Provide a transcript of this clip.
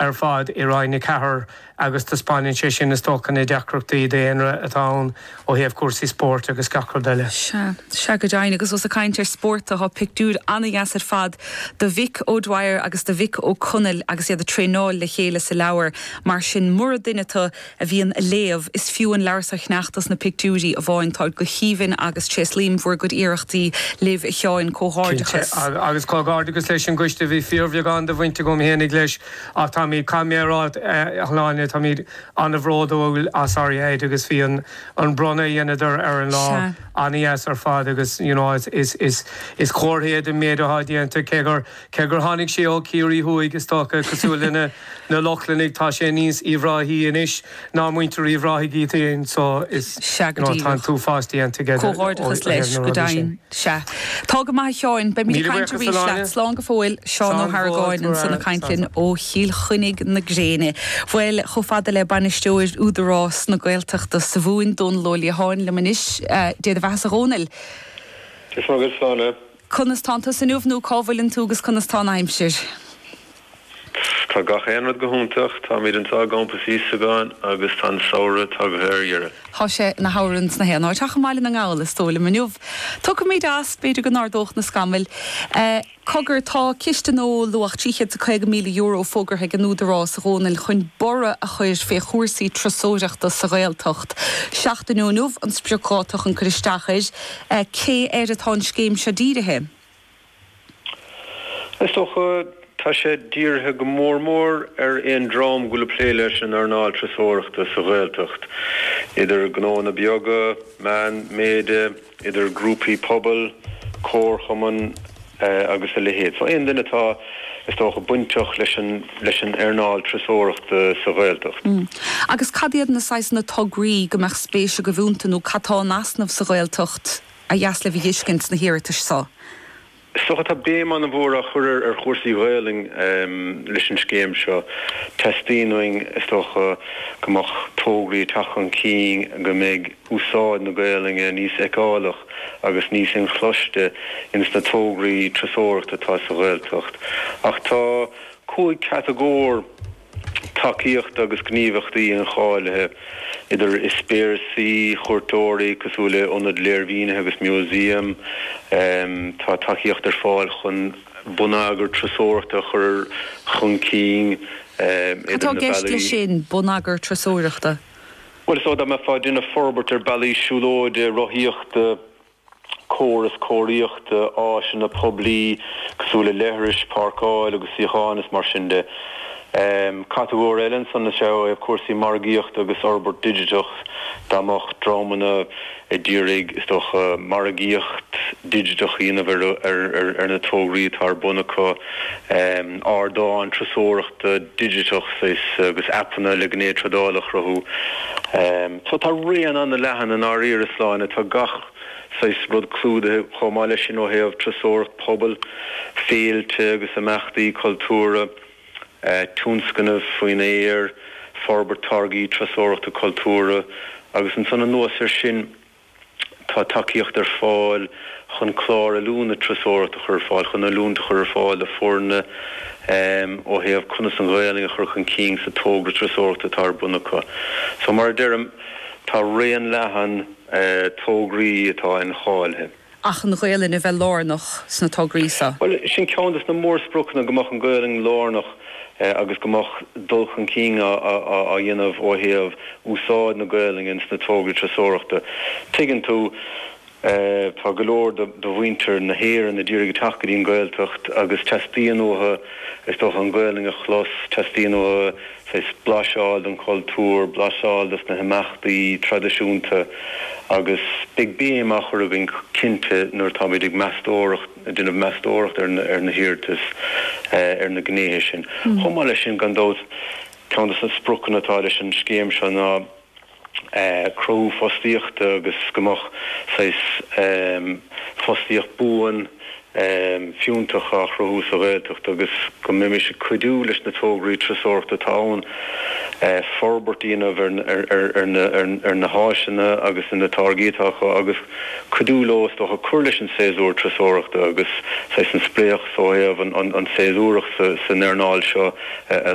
ar fad i Roinn 4 agus taispeáineann sé sin, is dócha, na deacrachtaí daonra atá ann ó thaobh cúrsaí spóirt agus gach rud eile. Sea. Sea go deimhin. Agus os ag caint ar spórt, tá pictiúir an-deas ar fad de Mhick O'Dwyer agus de Mhick Ó Conaill agus iad ag traenáil le chéile sa leabhar. Mar sin, mura duine tú, a bhíonn a léamh, is fiú an leabhar seo a cheannach, tá na pictiúirí amháin, táid go haoibhinn agus tréaslaím bhur gcuid iarrachtaí libh a Sheáin. Cinnte. Comhghairdeachas. Agus comhghairdeachas leis an gcoiste a bhí fíorbheagán de bhaint agam fhéinig leis ach táimid, caithfidh mé a rá, a Shláine, táimid an-bhródúil as ar a shaghad agus bhí an an bronnadh a dheineadar ar an lá Sea. an-deas ar fad agus you know is is is is comhartha é den méid atá déanta cé gur Cé gur tháinig sé ó Chiarraí thuaidh, is dócha, cosúil le na Lochlannaigh, tá sé níos Uíbh Ráthaí anois ná muintir Uíbh Ráthaigh iad féin. So is Sea, go díreach. no, tá an t-uafás déanta aige de, ó thaobh na rudaí sin. Comhghairdeachas leis, go deimhin. Sea. Tá go maith, a Sheáin. Beimid ag caint arís leat. Míle buíochas, a Shláine. Slán go fóill. Slán go fóill, slán. Seán Ó hArgáin ansan ag caint linn ó Chill Chainnigh na gréine. Bhuel, chomh fada le Bainisteoir Údarás na Gaeltachta sa Mhumhain, Dónall Ó Liatháin liom anois. Dia do bheathasa a Dhónaill. Go raibh maith agat, a Shláine. Conas tánn tusa inniu nó cá bhfuileann tú agus conas tá an aimsir? Tá gach aon rud go hiontach. Táimid anseo i gCampas Íosagáin agus tá an samhradh tagtha ar dheireadh. Tá sé ina shamhradh ins gach aon áit ach i mBaile na nGall is dóigh liom inniu. Tiocfaimid as, b'fhéidir go n-ardódh na scamaill. Cogar, tá ciste gnó luach €350,000 fógartha ag an Údarás a Dhónaill chun borradh a chur fé chúrsaí turasóireachta sa Ghaeltacht. Seachtain ó inniu an spriocdháta chun cur isteach air. Cé air atá an scéim seo dírithe? Is dócha tá sé dírithe go mór mór ar aon dream go bhfuil ag plé leis an earnáil turasóireachta sa Ghaeltacht, idir gnóanna beaga, meánmhéide, idir grúpaí pobail, comharchumainn, agus a leithéid. So aon duine atá, is dócha, bainteach leis an, leis an earnáil turasóireachta sa Ghaeltacht. Mm. Agus cad iad na saghsanna tograí go mbeadh spéis agaibh iontu nó cad tá in easnamh sa Ghaeltacht ba dheas libh a dh'fhiscint sna hiarratais seo? Is dócha, tá béim an-mhór á chur ar, ar chúrsaí Gaelainne leis an scéim seo. Teastaíonn uainn, is dócha, go mbeadh tograí ag teacht chun cinn go mbeidh, úsáid na Gaolainne níos feiceálach agus níos inchloiste ins na tograí turasóireachta atá sa Ghaeltacht. Ach tá cúig chatagóir tacaíochta agus gníomhaíochtaí incháilithe, idir eispéireasaí chuairteoirí, cosúil le ionaid léirmhínithe agus museum. Tá tacaíocht ar fáil chun bonneagar turasóireachta a chur chun cinn idir na bealaí. Cad tá i gceist leis sin, bonneagar turasóireachta? Bhuel, so dá mbeifeá ag déanamh forbairt ar bealaí siúlóide, rothaíochta, córas cóiríochta, áiseanna poiblí cosúil le leithris, páirceáil agus suíocháin is mar sin de. Catagóir eile ansan is ea é cúrsaí margaíochta agus forbairt digiteach. Dá mbeadh dreamanna. ag iarraidh, is dócha, margaíocht digiteach a dhéanamh ar na tograí atá ar bun acu, ardáin turasóireachta digiteach agus aipeanna le gné tradála a chruthú. So tá raon an-leathan i ndáiríre, Sláine, tá gach saghas rud clúdaithe chomh maith leis sin ó thaobh turasóireacht pobail, féilte agus imeachtaí cultúrtha. tionscnaimh faoin aer, forbairt táirgí turasóireachta cultúrtha agus ansan anuas air sin. Tá tacaíocht ar fáil chun clár oiliúna turasóireachta a chur ar fáil, chun oiliúint a chur ar fáil do foirne ó thaobh conas an Ghaelainn a chur chun cinn sa togra turasóireachta atá ar bun acu. So mar a deirim, tá raon leathan tograí atá incháilithe. ach an Ghaelainn a bheith lárnach sna tograí seo. Bhuel, sin ceann des na mórspriocanna, go mbeadh an Ghaelainn lárnach agus go mbeadh dul chun cinn á dhéanamh ó thaobh úsáid na Gaelainne sna tograí turasóireachta. Tuigeann tú, tá go leor de mhuintir na hÉireann ag iarraidh teacht go dtí an Ghaeltacht agus teastaíonn uathu, is dócha, an Ghaelainn a chlos, teastaíonn uathu, Is blaiseadh den chultúr, blaiseadh des na himeachtaí traidisiúnta agus beidh béim á chur againn cinnte nuair atáimid ag meastóireacht, ag déanamh meastóireacht ar na hiarratais, ar na gnéithe sin. Chomh maith leis sin, gan dabht, ceann des na spriocanna atá leis an scéim seo ná, cruthú fostaíochta agus go mbeadh saghas fostaíocht buan fiúntach á chruthú sa Ghaeltacht agus go mbeimis ag cuidiú leis na tograí turasóireachta atá ann forbairt a dhéanamh ar na háiseanna agus ar na táirgí atá acu agus cuidiú leo is dócha cur leis an séasúr turasóireachta agus saghas an spleáchas ó thaobh an séasúracht san earnáil seo a